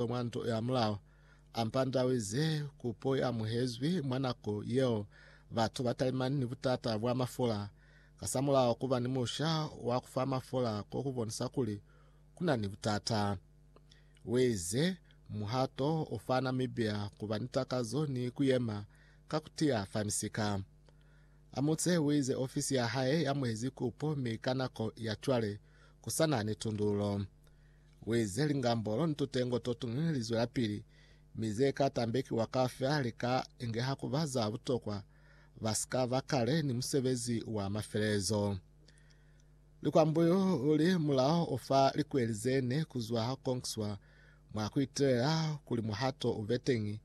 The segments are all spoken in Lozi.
Kwe mwa nto ya mulao, ampandawize kupo ya muhezwi mwa nako yeo batu ba talimani ni butata bwa mafola. Kasamulaho kuba ni musha wa kufa mafola ko ku bonisa kuli kuna ni butata. Weze muhato o fa Namibia kuba ni takazo ni kuyema ka kutiya fa misika. Amutse wize ofisi ya hae ya muhezi kupo mi ka nako ya cwale kusana ni tundululo. Uize, Lingambolo ni tutengo totuñwi li zwelapili, mi ze ka tambekiwa kaufela li ka ingeha ku ba za butokwa, ba si ka ba kale ni musebezi wa mafelelezo. Likwambuyu li mulao o fa likweli ze ne ku zwa ha konkiswa mwa ku itelela kuli muhato u be teñi.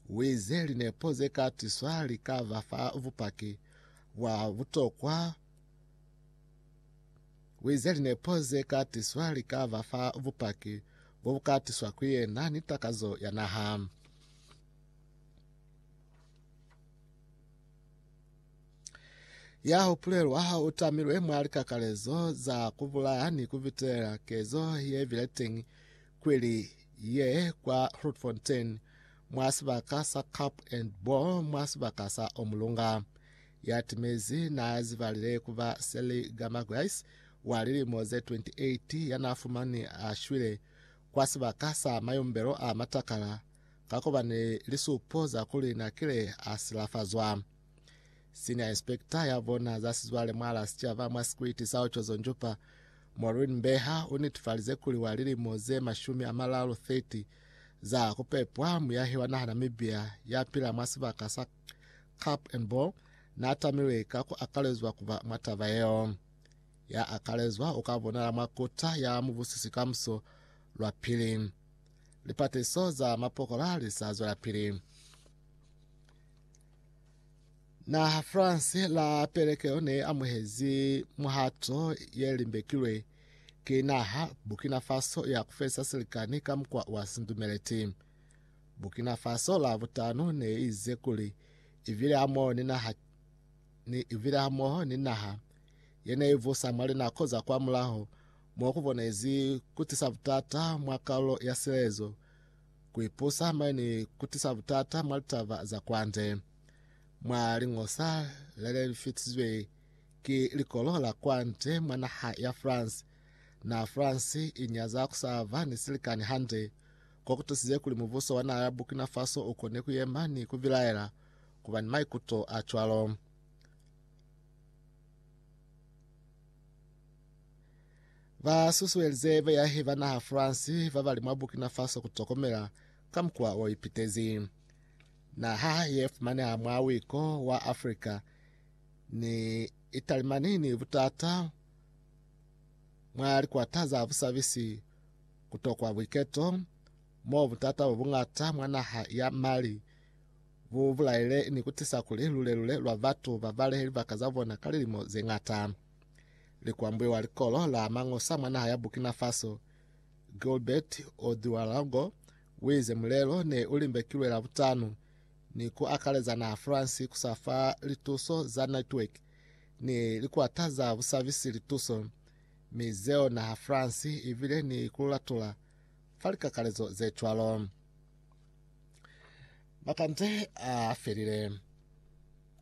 Uize, Linepo ze ka tiswa li ka ba fa bupaki bwa butokwa, Wize linepo ze ka tiswa li ka ba fa bupaki bo bu ka tiswa ku yena ni takazo ya naha. ya hupulelwa u tamilwe mwa likakalezo za kubulaya ni kubitela kezo ye bileteng kweli ye kwa Grootfontein mwa sibaka sa Cup and Ball mwa sibaka sa Omulunga. ya timezi n'a zibalile ku ba Sally Gamaguys wa lilimo ze 28 ya n'a fumani a shwile kwa sibaka sa mayumbelo a matakala ka ku ba ni lisupo za kuli n'a kile a silafazwa. Senior Inspector ya bona za sizwale mwa la sicaba mwa sikwiti sa Ochozo Njupa, Maureen Mbeha u nitifalize kuli wa lilimo ze mashumi a malalu 30 za ku pepwa muyahi wa naha Namibia ya pila mwa sibaka sa Cup and Ball, n'a tamilwe ka ku akalezwa ku ba mwa taba yeo. Ya akalezwa u ka bonala mwa kota ya mubusisi kamuso lwa pili. Lipateliso za mapokola li sa zwelapili. Naha France la pelekeo ne amuhezi muhato ye limbekilwe ki naha Burkina Faso ya ku felisa silikani ka mukwa wa sindumeleti. Burkina Faso la butanu ne ize kuli ibile hamoho ni naha ni ibile hamoho ni naha yene ivusa mwa linako za kwa mulaho mo kubonezi kutisa butata mwa kaulo ya silezo kuipusa maini kutisa butata mwa litaba za kwande mwa lingosa lele lifitizwe ki likolo la kwande mwa naha ya France na France inyaza kusava ni silikani hande ko ku tusize kuli mubuso wa naha ya Burkina Faso u kone ku yema ni ku bilaela ku ba ni maikuto a cwalo. Ba susuelize beyahi ba naha France ba ba li mwa Burkina Faso ku tokomela ka mukwa o ipitezi. Naha ye fumaneha mwa wiko wa Afrika ni italimani ni butata mwa likwata za busabisi kutokwa buiketo mo butata bo buñata mwa naha ya Mali bu bulaile ni kutisa kuli lule-lule lwa batu ba balehe libaka za bona ka lilimo ze ñata. Likwambule wa likolo la mañosa mwa naha ya Burkina Faso, Gilbert Ouedraogo, uize mulelo ne u limbekilwe Labutanu ni ku akaleza naha France ku sa fa lituso za network ni likwata za busabisi lituso Mi zeo naha France i bile ni ku latula fa likakalezo ze cwalo. Bakante a felile.